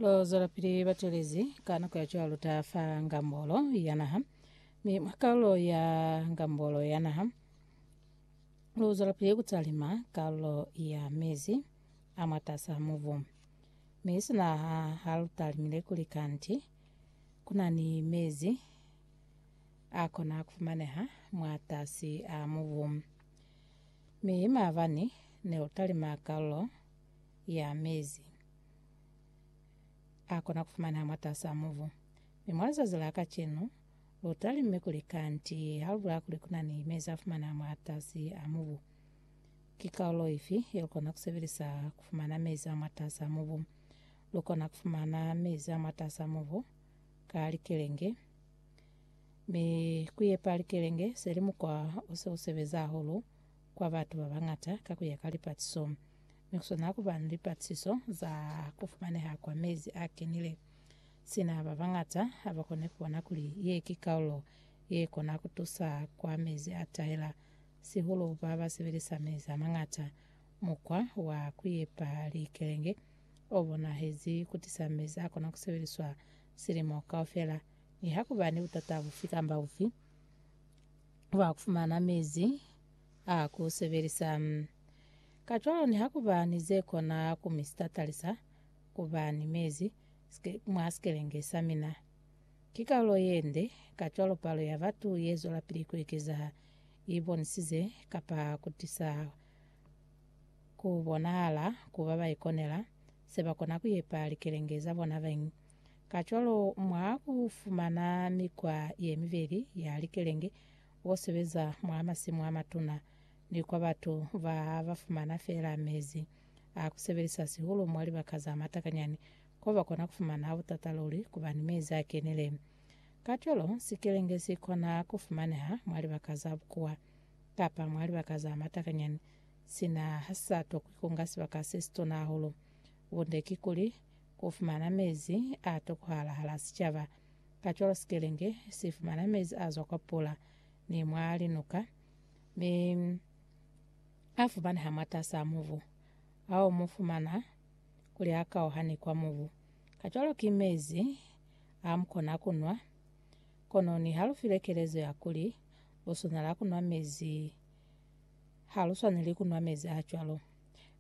Lo zwelapili batelezi ka nako ya cwalo ta fa ngambolo ya naha mi mwa karolo ya ngambolo ya naha lo zwelapili kutalima karolo ya mezi a mwatasa muvu mi sina ha ha lu talimile kuli kanti kuna ni mezi a kona kufumaneha mwatasi a muvu mi mavani ne utalima karolo ya mezi a kona kufumanaha mwatasaa mubu. Mi mwa lizazi la kacenu, lu talimme kuli kanti ha lu bula kuli kuna ni mezi a fumanaha mwatasi a mubu. Ki kaulo ifi ye lu kona kusebelisa kufumana mezi a mwatasaa mubu? Lu kona kufumana mezi a mwatasaa mubu ka likelenge. Mi kuyepa likelenge se li mukwa o se u sebeza hahulu kwa batu ba bañata ka ku ya ka lipatiso, mi ku swana ku ba ni lipatiso za ku fumaneha kwa mezi a kenile. Sina ba bañata ha ba kone ku bona kuli ye ki kaulo ye kona ku tusa kwa mezi a tahela, sihulu ba ba sebelisa mezi a mañata, mukwa wa ku yepa likelenge o bonahezi ku tisa mezi a kona ku sebeliswa silimo kaufela. Nihakuba ni butata bufi kamba bufi, ba fumana mezi a ku sebelisa. Kacwalo nihakuba ni ze kona ku mi sitatalisa ku ba ni mezi mwa sikelenge sa mina, ki kalulo ye nde, kacwalo palo ya batu ye zwelapili ku ekeza i bonisize kapa ku tisa ku bonahala ku ba ba ikonela se ba kona ku yepa likelenge za bona bañwi. Kacwalo, mwa ku fumana mikwa ye mibeli ya likelenge, bo sebeza mwa masimu a matuna, ni kwa batu ba ba fumana feela mezi a ku sebelisa sihulu mwa libaka za matakanyani, ko ba kona ku fumana ha butata luli ku ba ni mezi a kenile. Kacwalo, sikelenge si kona ku fumaneha mwa libaka za bukuwa, kapa mwa libaka za matakanyani, sina ha si sa tokwi ku nga sibaka se situna hahulu. Bunde kikuli, Ku fumana mezi a tokohala hala sicaba. Kacwalo sikelenge si fumana mezi a zwa kwa pula ni mwa linuka, mi a fumaneha mwatas'a mubu, ao mu fumana kuli a kauha ni kwa mubu. Kacwalo ki mezi a mu kona ku nwa. Kono niha lu filwe kelezo ya kuli lu swanela ku nwa mezi, ha lu swaneli ku nwa mezi a cwalo.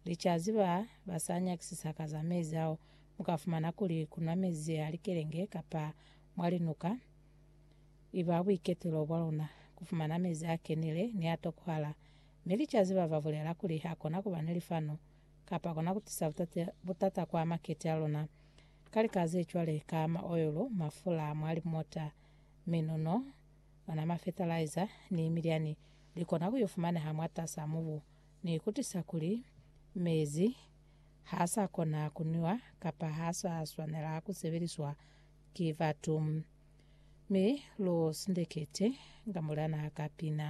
Licazi ba ba sa nyakisisa ka za mezi ao, mu ka fumana kuli ku nwa mezi a likelenge kapa mwa linuka i ba buiketulo bwa luna. Ku fumana mezi a kenile ni a tokohala. Mi licazi ba ba bulela kuli ha kona ku ba ni lifanu kapa kona ku tisa butata kwa makete a luna ka lika ze cwale ka maoyolo, mafula a mwa limota, minuno, ona mafetalaiza, ni milyani. Li kona ku yo fumaneha mwatas'a mubu. Ni ikutisa kuli, mezi ha sa kona ku nwiwa kapa ha sa swanela ku sebeliswa ki batu. Mi lu sindekete nga mulena ka pina.